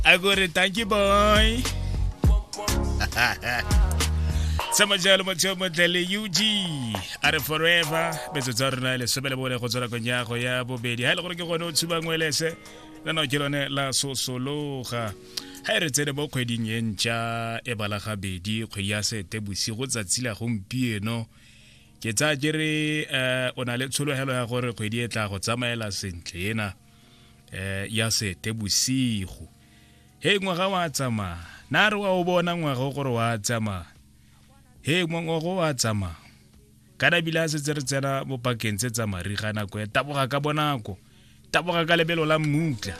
a go re thank you boy sama jalo motho yo montle le ug a re forever betso tsa rona lesome le bone go tswa nakong ya go ya bobedi ga e le gore ke gone o tshubang welese la nao ke lone la sosologa ga e re tsene mo kgweding e ntšha e bala gabedi kgwedi ya sete bosigo tsatsi la gompieno ke tsaya ke re um o na le tshologelo ya gore kgwedi e tla go tsamaela sentle ena eh ya sete bosigo he ngwaga wa tsamaya na re wa o bona ngwaga gore wa tsamaya he ngwaga wa tsamaya ka nabile a setse re tsena mo pakeng tse tsa mariga nako e taboga ka bonako taboga ka lebelo la mmutla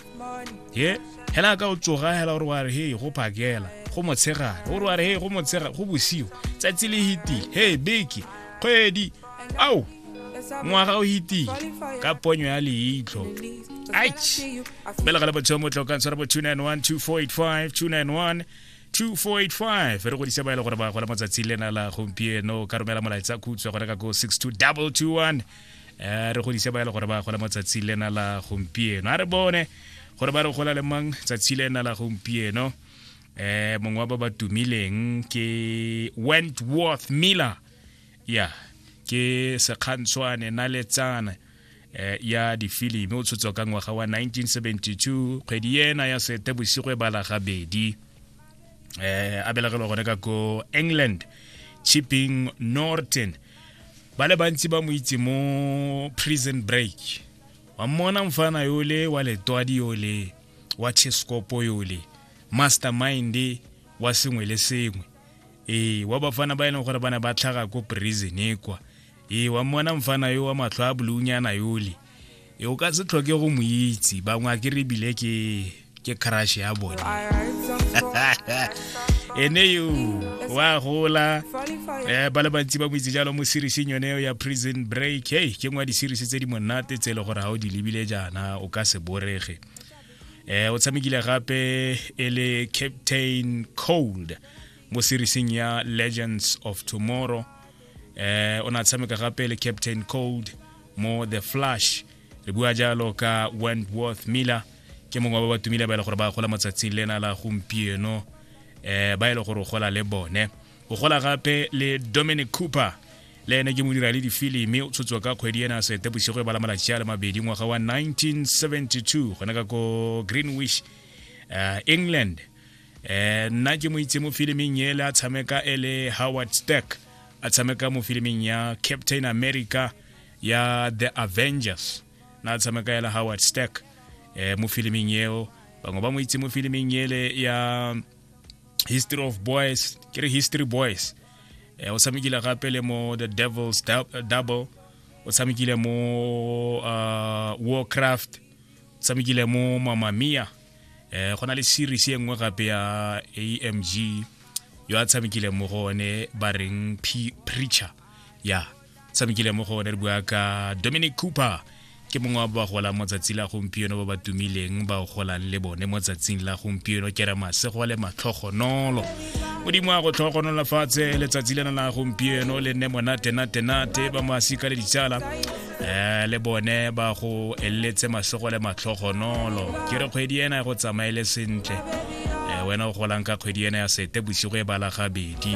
he hela ka o tsoga hela gore wa re he go phakela go motshegare gore wa re he go motshegare go bosigo tsatsi le hiti he beke kgwedi ao ngwaga o itile ka ponyo ya leitlho aish belega le botsheo motlho ka ntshwara bo 291 291 2485 re godisa ba e le gore ba gola matsatsi lena la gompieno ka romela molaetsa khutswa gone ka ko 62221 eh, re godisa ba e le gore ba gola matsatsi lena la gompieno a re bone gore ba re gola le mang tsatsi lena la gompieno eh mongwe wa ba ba tumileng ke wentworth miller ya ke sekgantshwane na letsana eh, ya difilimi o tshotswa ka ngwaga wa 1972 kgwedi ena ya sete bosigo e bala gabedi eh a belagelwa gone ka ko england chipping norton ba le bantsi ba mo itse mo prison break wa mmona mfana yole wa letwadi yole wa cheskopo yole mastermind wa sengwe le sengwe ee wa bafana ba e leng gore ba ne ba tlhaga ko prison e kwa ee wa mmona mfana yo wa matlho a bolunyana yole e o ka se tlhoke go mo itse bangwe a ke re ebile ke ke crush ya bone ene yo wa gola um ba le bantsi ba mo itse jalo mo serieseng yone ya prison break hey ke ngwa di-series tse di monate tse e le gore ga o di lebile jaana o ka se borege eh o tshamekile gape e le captain cold mo serieseng ya legends of tomorrow eh o na tshameka gape le captain cold mo the flash re bua jalo ka wentworth miller ke mongwe wa ba ba tumile ba e le gore ba gola motsatsing lena la gompieno eh ba e le gore o gola le bone o gola gape le dominic cooper Le ene ke modira le difilimi o tshotswa ka kgwedi ena sete bosigo e bala malatsi a le mabedi ngwaga wa 1972 gona ka ko greenwish uh, england eh nna ke mo itse mo filiming ele a tshameka e le howard stack a tshameka mo filiming ya captain america ya the avengers na a tshameka ele howard stack eh mo filiming eo bangwe ba mo itse mo filiming ele ya history of boys ke re history boys eh, o tshamekile gape le mo the devils double o tshamekile mo uh, warcraft o tshamekile mo mamamia eh, go na le series e nngwe gape ya amg yo a tshamekile mo go one ba reng preacher ya yeah. tshamekile mo go one re bua ka dominic cooper ke mongwe wa bagolang mo tsatsi la gompieno ba ba tumileng ba golang le bone mo tsatsing la gompieno ke re masego le matlhogonolo modimo a go tlhogonola fatshe letsatsi lena la gompieno le nne monatenatenate ba masika le ditsala um le bone ba go eletse masego le matlhogonolo ke re kgwedi ena go tsamaele sentle um wena o golang ka kgwedi ena ya sete bosigo e bala gabedi